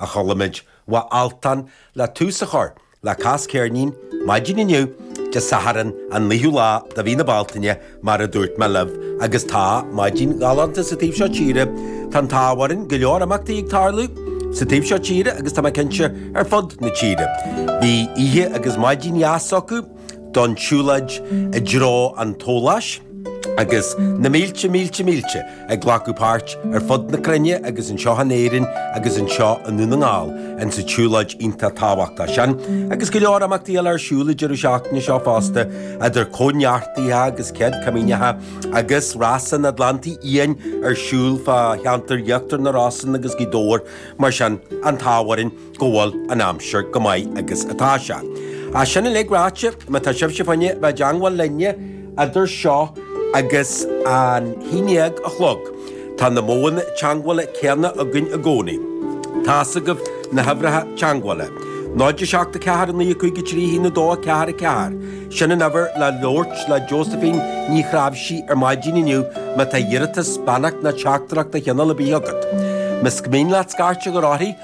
a chuala muid ó Altan le tús a chur le Cas Ceirnín maidin inniu, Dé Sathairn an naoú lá de mhí na Bealtaine, mar a dúirt mé libh, agus tá maidin ghalánta sa taobh seo tíre, tá an t-ádh orainn go leor imeachtaí ag tarlú sa taobh seo tíre agus tá mé cinnte ar fud na tíre. Bhí oíche agus maidin dheas acu. don tsiúlóid i dtreo an tSolais, agus na mílte mílte mílte ag glacadh páirt, ar fud na cruinne agus anseo in Éirinn agus anseo i nDún na nGall, insa tsiúlóid iontach tábhachtach sin. Agus go leor imeachtaí eile ar siúl i deireadh seachtaine seo fosta, idir Cóineartaithe agus Céad Chomaoineacha, agus Rás an Atlantaigh Fhiáin ar siúl fá cheantar Íochtar na Rosann agus Gaoth Dobhair, mar sin, an t-ádh orainn. go bhfuil an aimsir go maith agus atá sé. Is sin uilig ráite, má tá sibhse ag iarraidh a bheith i dteagmháil linne idir seo agus an haon déag a chlog, tá na modhanna teagmhála céanna againn i gcónaí. Tá's agaibh na huimhreacha teagmhála. 0 7 4 9 5 3 1 2 4 4, sin an uimhir le labhairt le Josephine Ní Chnáimhsí ar maidin inniu má tá iarratas, beannacht nó teachtaireacht de chineál ar bith agat. Más mian leat scairt a chur uirthi,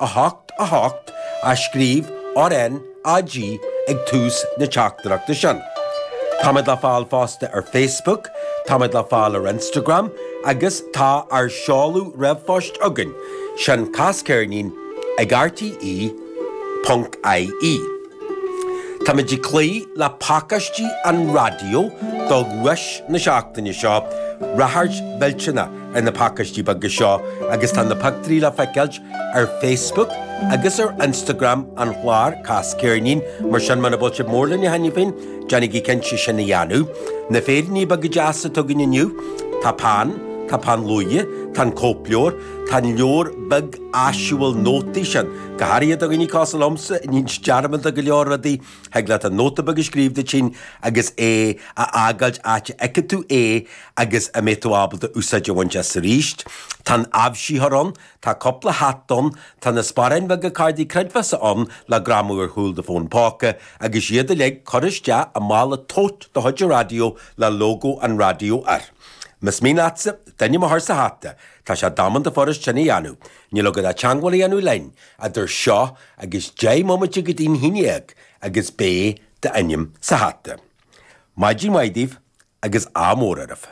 8, 8, a scríobh RnaG ag tús na teachtaireachta sin. Táimid le fáil fosta ar Facebook, táimid le fáil ar Instagram agus tá ár seoladh r-phoist againn, sin casceirnin ag rte. ie. Táimid ag cloí le pacáistí an raidió do dhuais na seachtaine seo, ráchairt mhillteanach ar na pacáistí beaga seo agus tá na pictiúirí le feiceáilt ar Facebook agus ar Instagram an chláir, Cas Ceirnín, mar sin muna bhfuil sibh mór linn cheana féin, déanaigí cinnte sin a dhéanamh. Tá féiríní beaga deasa againn inniu, tá peann, tá peann luaidhe, tá an cóipleabhar, tá an leabhar beag áisiúil nótaí sin. Go háirithe do dhaoine cosúil liomsa, a níonns dearmad de go leor rudaí, thig leat an nóta beag a scríobh duit féin agus é a fhágáilt áit a fheicfidh tú é agus a mbeidh tú ábalta úsáid a bhaint as arís. Tá an aibhsítheoir ann, tá cúpla hata ann, tá na sparáin bheaga cártaí creidmheasa ann le greamú ar chúl do fóin póca agus iad uilig curtha isteach i mála tote de chuid an raidió le lógó an raidió air. Más mian leatsa d'ainm a chur sa hata, tá sé damanta fuirist sin a dhéanamh. Níl agat ach teagmháil a dhéanamh linn, idir seo, agus deich mbomaite go dtí'n haon déag agus beidh d'ainm sa hata. Maidin mhaith daoibh agus ádh mór oraibh.